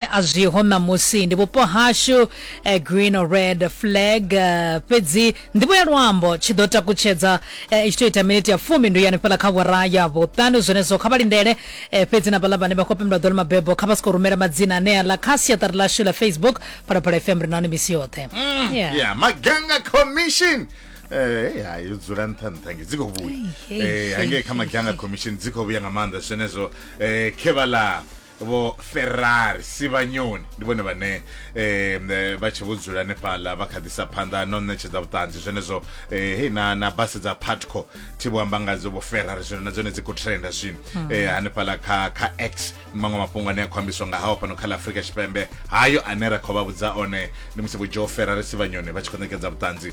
a zwiho ṋamusi ndi vhupo hashu eh, green or red flag eh, fhedzi nḓivho ya luambo tshi ḓo takutshedza eh, i tshi to ita miniti ya fumi ndi yani fhala kha vhora ya vhuṱanu zwenezwo kha vha lindele eh, fhedzi na vhaḽa vhane vha khou pembela ḓo ḽi mabebo kha vha si khou rumela madzina anea ḽa kha siaṱari ḽashu ḽa facebook phalaphala fm ri nahone misi yoṱhe Yeah. ya maganga commission Eh, ya yo dzula nṱha nṱha nge dzi khou vhuya Ei, ei, Eh, hangei ei, kha maganga commission dzi khou vhuya nga maanḓa zwenezwo eh, khe vhaḽa vho ferrari sivhanyoni ndi vhone vhane eh, eh, vha tshe vho dzula hanefhaḽa vha kha ḓisa phanḓa no ṋetshedza vhuṱanzi zwenezwo eh, hei na, na basi dza patco thi vho amba ngadzo vho ferrari zwino na dzone dzi khou trenda zwino eh, hanefhaḽa kha, kha x ndi maṅwe mafhungo ane a khou ambiswa nga hawo fhano kha ḽa afurika tshipembe hayo ane ra khou vha vhudza one ndi musi vho joe ferrari sivhanyoni vha tshi khou ṋekedza vhuṱanzi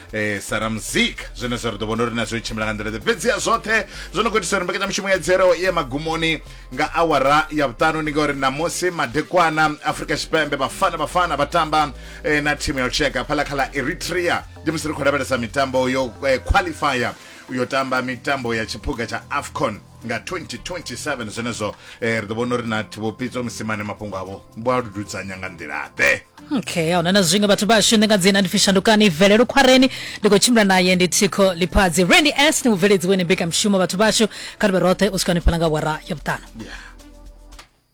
eh, sara muzika zwenezwo ri ḓo vhona uri na zwo tshimbila nga nḓila ḓe fhedzi ya zwoṱhe zwo no khou itisa uri mbekanyamushumo ya dzero ye magumoni nga awara ya vhuṱanu ndi ngauri namusi madekwana afrika tshipembe vhafana vhafana vha tamba eh, na thimu ya lushaka phala kha ḽa eritrea ndi musi ri khou lavhelesa mitambo yo eh, qualifier yo tamba mitambo ya tshiphuga tsha afcon nga 2027 zwenezwo eh, ri ḓo vhona uri na thivhopitso musimane mafhungo avho vho a lududzanya nga nḓila-ḓe okay ahuna na zwiṅwe vhathu vhashu ndi nga dzina ndi fishandukani velelo khwareni ndi khou tshimbila naye ndi thikho liphadzi randy s ni mubveledzi weni mbekanyamushumo vhathu vhashu kha ri vhe roṱhe u swika ni fhala nga wara ya vhuṱanu yeah.